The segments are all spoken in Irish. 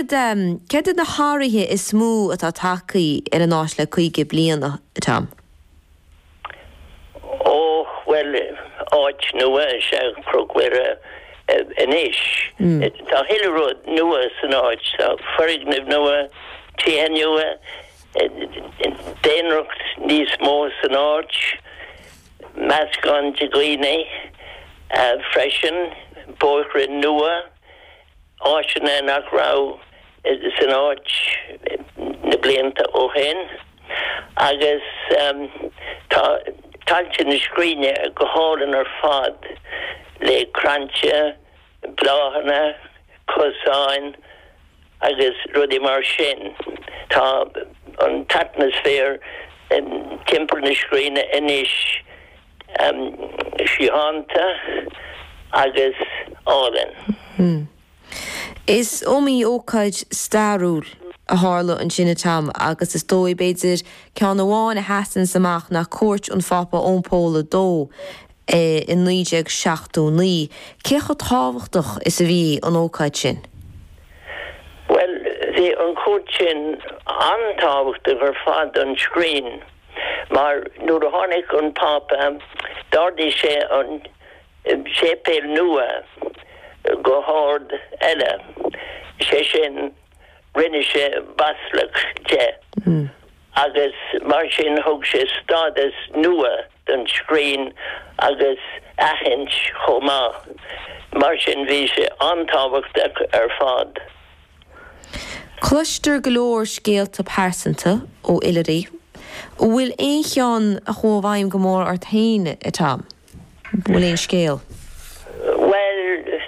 Céard iad na hathruithe is mó atá tagtha ar an áis le caoga bliain, a Tom? Ó, bhuel, áit nua is ea Cnoc Mhuire anois. Tá a thuilleadh rud nua san áit. Tá foirgnimh nua, tithe nua, daonracht níos mó san áit, meascán de dhaoine freisin, bóithre nua, áiteanna nach raibh san áit na blianta ó shin agus tá tailte na scríne go hálainn ar fad le crainnte, bláthanna, cosáin agus rudaí mar sin. Tá an t-atmaisféar timpeall na scríne anois síochánta agus álainn. Is iomaí ócáid stairiúil a tharla ansin, a Tom, agus is dóigh, b'fhéidir, ceann amháin a sheasanns amach ná cuairt an Phápa Eoin Pól a Dó i 1979. Cé chomh tábhachtach is a bhí an ócáid sin? Bhuel, bhí an chuairt sin an-tábhachtach ar fad don scrín. Mar nuair a tháinig an Pápa, d'ardaigh sé an séipéal nua go hard eile, sé sin, rinne sé baisleac de, agus mar sin thug sé stádas nua don scrín agus aithint chomh maith. Mar sin bhí sé an-tábhachtach ar fad. Cloistear go leor scéalta pearsanta ó oilithrigh. An bhfuil aon cheann a chuaigh i bhfeidhm go mór ort féin, a Tom? An bhfuil aon scéal? Bhuel,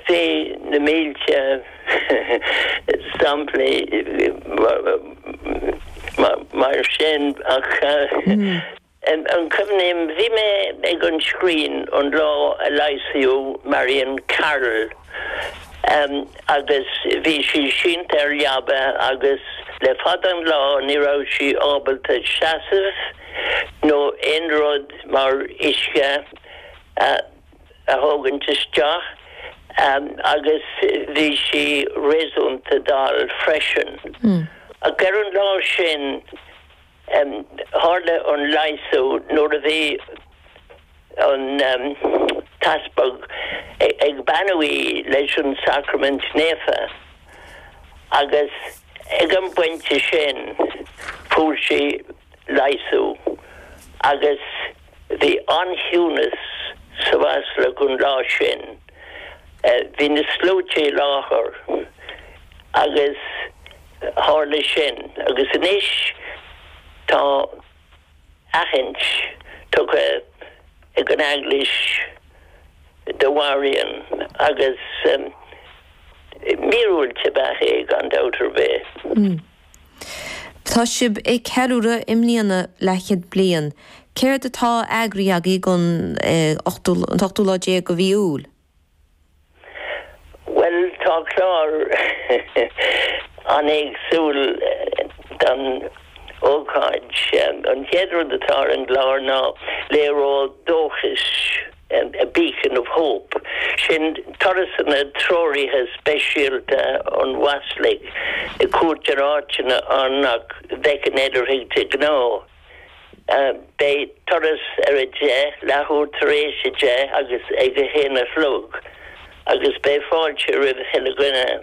tá na mílte samplaí mar sin ach. Cuimhním, bhí mé ag an scrín an lá a leigheasadh Marion Carroll agus bhí sí sínte ar leaba agus le fada an lá ní raibh sí ábalta seasamh nó aon rud mar uisce a thógaint isteach agus bhí sí réasúnta dall freisin. Ach ar an lá sin, Tharla an leigheasú nuair a bhí an t-easpag ag beannú í leis an Sacraimint Naofa agus ag an bpointe sin fuair sí leigheasú agus bhí an-chiúnas sa mBaisleac an lá sin. Bhí na sluaite i láthair agus. Tharla sin agus anois tá aithint tugtha ag an Eaglais do Mharion agus míorúilt ab ea é gan dabht ar bith. Tá sibh ag ceiliúradh i mbliana leathchéad bliain. Céard atá eagraithe agaibh don ochtú lá déag de mhí Iúil? Bhuel, tá clár an-éagsúil don ócáid. An chéad rud atá ar an gclár ná léaró dóchais, a beacon of hope. Sin turasanna treoraithe speisialta ón mBaisleac, ag cuairt ar áiteanna ann nach bhfeiceann oilithrigh de ghnáth. Beidh turas ar a deich leathuair tar éis a deich agus ag a haon a chlog agus beidh fáilte roimh chuile dhuine.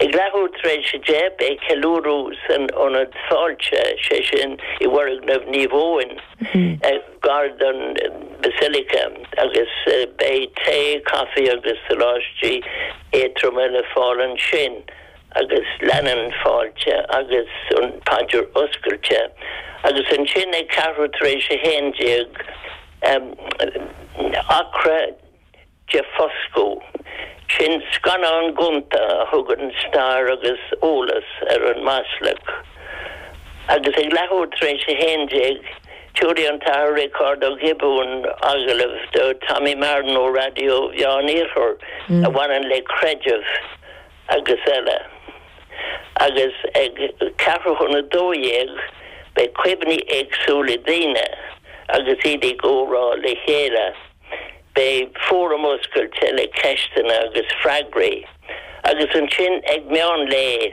Ag leathuair tar éis a deich beidh ceiliúradh san Ionad Fáilte, sé sin i bhfoirgneamh Naomh Eoin, gar don Basilica agus beidh tae, caife agus soláistí éadtroma le fáil ansin. agus leanann fáilte agus an paidir oscailte agus ansin ag ceathrú tar éis a haon déag acra de foscadh. Sin scannán gonta a thugann stair agus eolas ar an mBaisleac. Agus ag leathuair tar éis a haon déag tiúrfaidh an tAthair Riocard Ó Giobúin agallamh do Tommy Marren ó Raidió Mheán Iarthar a bhaineann le creideamh, agus eile. Agus ag ceathrú chun a dó dhéag beidh cuimhní éagsúla daoine agus iad ag comhrá le chéile. Beidh fóram oscailte le ceisteanna agus freagraí. Agus ansin ag meán lae